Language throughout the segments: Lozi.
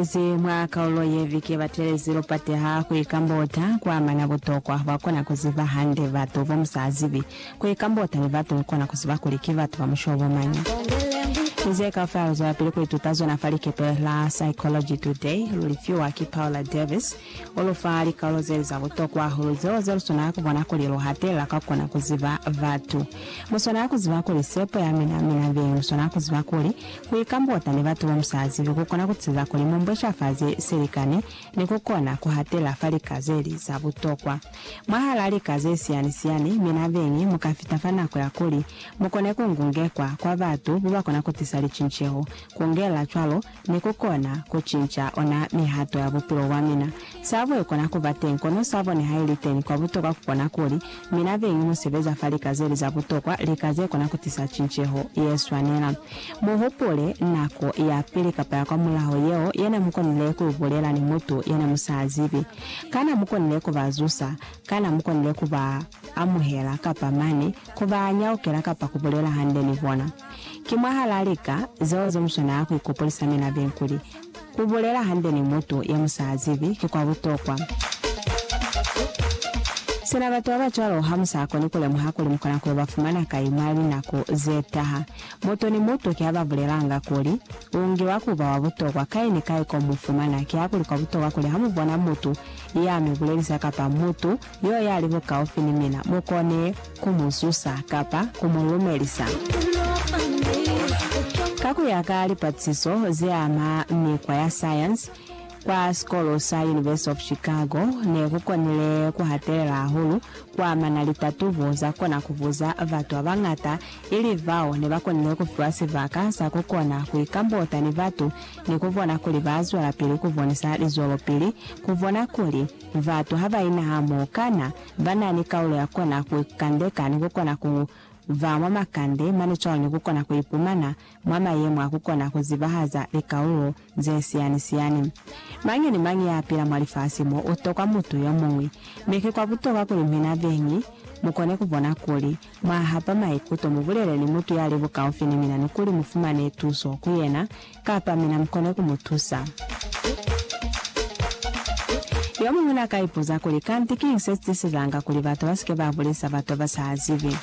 Baezezi mwa kaulo ye vike ba telezi lupate ha ku ikambota ku amana butokwa bwa ku kona ku ziba hande batu bo mu sa zibi. Ku ikambota ni batu ni ku kona ku ziba kuli ki batu ba mushobo mañi. Ki ze kaufela lu zwelapili ku ituta zona fa likepe la Psychology Today lu li fiwa ki Paula Davies. U lu fa likaulo ze li za butokwa hahulu zeo ze lu swanela ku bona kuli lu hatelela ka ku kona ku ziba batu. Mu swanela ku ziba kuli sepo ya mina, mi nabeñi mu swanela ku ziba kuli ku ikambota ni batu bo mu sa zibi ku kona ku tiisa kuli mu mbweshafaze silikani ni ku kona ku hatelela fa lika ze li za butokwa. Mwahal'a lika ze siyani-siyani, mi nabeñi mu ka fita fa nako ya kuli mu kone ku ngungekwa kwa batu ba ba kona ku tisa licinceho, ku ngelela cwalo Ne ku kona ku cinca ona mihato ya bupilo bwa mina. Sa bue kona ku ba teñi, kono sa bone haili teñi. Kwa butokwa ku kona kuli, mina beñi mu sebeza fa lika ze li za butokwa, lika ze kona ku tisa cinceho ye swanela. Mu hupule nako ya pili kapa ya kwa mulaho yeo ye ne mu konile ku i bulela ni mutu ye ne mu sa zibi. Kana mu konile ku ba zusa? Kana mu konile ku ba amuhela, kapa mane, ku ba nyaukela kapa ku bulela hande ni bona? Ki mwahalaa lika zeo ze muswa naa ku ikopolisa mi labeng kuli, ku bulela hande ni mutu ye mu sa zibi ki kwa butokwa. Sina batu ba ba cwalo ha mu sa koni ku lemuha kuli mu kona ku yo ba fumana kai mwa linako ze taha, mutu ni mutu ki a ba bulelanga kuli, U ngiwa ku ba wa butokwa kai ni kai ko mu fumana. Kihakulikwa butokwa kuli ha mu bona mutu ya mi bulelisa kapa mutu Yo yali bukaufi ni mina mukone ku mu zusa kapa ku mu lumelisa. Ka ku ya ka lipatisiso ze ama mikwa ya sayansi kwa sikolo sa University of Chicago, ne ku konile ku hatelela hahulu ku amana litatubo za kona ku buza batu ba bañata, ili bao ne ba konile ku fiwa sibaka sa ku kona ku ikambota ni batu ni ku bona kuli ba zwelapili ku bonisa lizwelopili ku bona kuli Batu ha ba ina hamoho, kana ba na ni kaulo ya kona ku ikandeka ni ku kona ku ba mwa makande mane cwalo ni ku kona ku ipumana mwa mayemo a ku kona ku zibahaza likaulo ze siyani-siyani? Mañi ni mañi ya pila mwa lifasi mo u tokwa mutu yo muñwi, mi ki kwa butokwa kuli mina beñi mu kone ku bona kuli mwa hapa maikuto, mu bulele ni mutu ya li bukaufi ni mina ni kuli mu fumane tuso ku yena Kapa mina mukona ku mu tusa. Yomuñwi na ka ipuza kuli, Kanti kiñi se tisizanga kuli batu ba si ke ba bulisa batu ba sa zibi?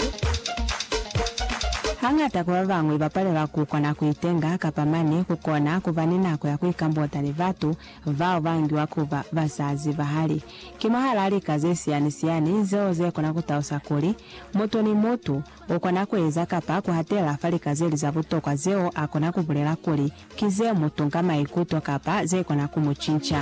Hañata kwa ba bañwi ba palelwa ku kona ku itenga kapa mane ku kona ku ba ni nako ya ku ikambota ni batu bao ba ngiwa ku ba ba sa zibahali. Ki mwahal'a lika ze siyani-siyani zeo ze kona ku talusa kuli, mutu ni mutu U kona ku eza kapa ku hatela fa lika ze li za butokwa zeo a kona ku bulela kuli ki ze mu tunka maikuto kapa ze kona ku mu cinca.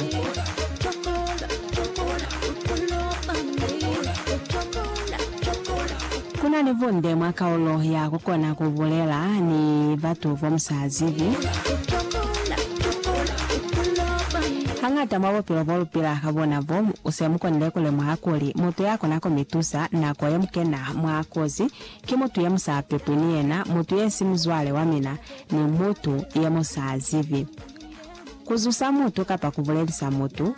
Ku na ni bunde mwa kaulo ya ku kona ku bulela ni batu bo mu sa zibi. Hañata mwa bupilo bo lu pila ka bona bo, mu se mu konile ku lemuha kuli mutu ya kona ku mi tusa nako ye mu kena mwa kozi, ki mutu ye mu sa pepwi ni yena, mutu ye si muzwale wa mina, ni mutu ye mu sa zibi. Ku zusa mutu kapa ku bulelisa mutu,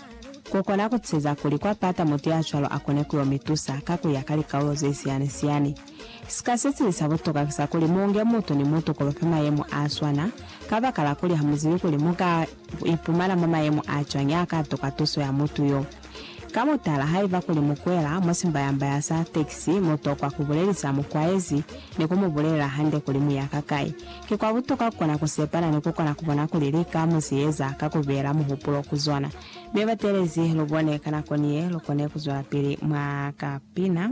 ku kona ku tiseza kuli kwa pata mutu ya cwalo a kone ku yo mi tusa ka ku ya ka likaulo ze siyani-siyani. Sika se sili sa butuka ki sa kuli mu nge mutu ni mutu ku ba fa mayemo a swana, kabakala kuli ha mu zibi kuli mu ka ipumana mwa mayemo a cwañi a ka tuka tuso ya mutu yo. Ka mutala, haiba kuli mukwela mwa simbayambaya sa tekisi, mutokwa kubulelisa mukwaezi ni kumubulelela hande kuli muya kakai. Ki kwa butokwa kukona kusepana ni kukona kubona kuli lika muzieza ka kubeela muhupulo ku zona. Mi batelezi, lubone ka nako ni ye lukone kuzwelapili mwa kapina.